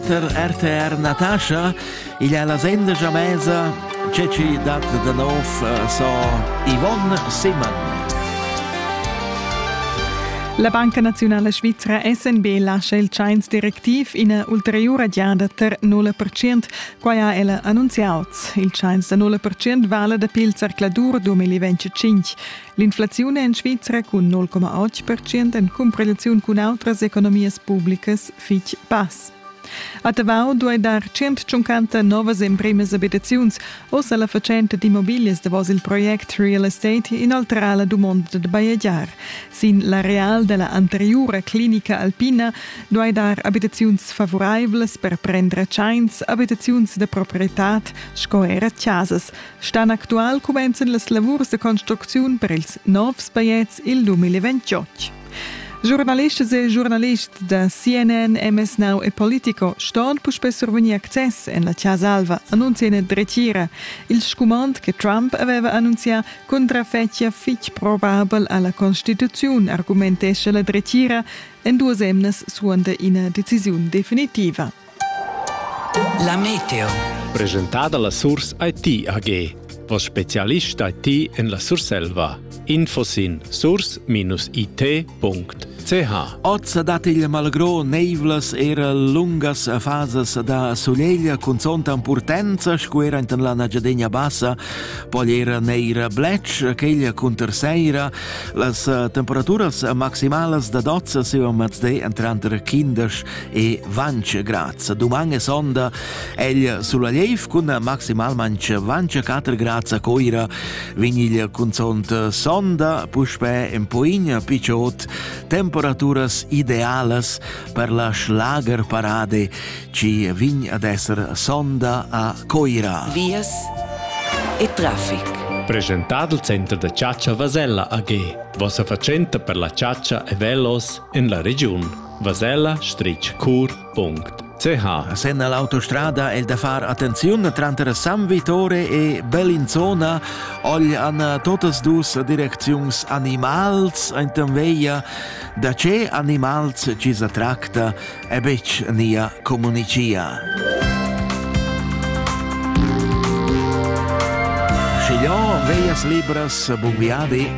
per RTR Natascha, igl è la senda Jamesa, tge ci dat da nov eh, so Yvonne Simon. La Banca Nazionale Svizzera SNB lascia il Chinese directiv ina ulteriura giada tar 0%. Quai ha el annunziato. Il Chinese da 0% vale da pilzar Cladur 2025. L'inflaziun è en Svizra cun 0,8% en cumprelaziun cun autras economias publicas fitg bass. A Tavau duai dar 150 novas emprimas abitaziuns. Oz ha la fatschenta d'immobiglias davos il project Real Estate inoltrà la dumonda da bajegiar. Sin l'areal da la anteriura clinica alpina duai dar abitaziuns favuraivlas per prendere tschains, abitaziuns da proprietad sco era chasas. Stan actual cumenzan las lavurs de construcziun per ils novs paiets il 2028. Giornalistas e giornalists da CNN, MS Now e Politico ston puspè survegnir access en la Chasa Alva, annuncia ina dretgira. Il scumand che Trump aveva annunzià contrafettia fitg probabel alla Constituzione, argumentescha la dretgira en duas emnas suande ina decisiun definitiva. La meteo. Presentada la Surs IT AG. Vos specialist IT en la Surselva. Info sin surs-it.ch Ozza dat il malgro neivlas era lungas fasas da suneglia cun zonta purtenza squera enten la nagiadegna bassa, poi era neira blec, queglia cunter seira, las temperaturas maximalas da dozza se o mazde entranter 15 e Vanche Graz. Duman e sonda egl sulla Leif cun maximalmente Vanche 4 Graz a Coira vin il cunzont sonda puspe en poigna picciot temperaturas idealas per la Schlagerparade ci vin ad esser sonda a Coira. Vias e traffic. Presentad il center da caccia Vasella AG. Vossa fatschenta per la caccia e velos en la regiun. Vasella stritg cur punct ch. Sen all'autostrada è da far attenziun tranter San Vittore e Bellinzona ogl an totas dus direcziuns animals enten veia da ce animals ci sa tracta e betg nia comunicia. Schigliò veias libras buviadi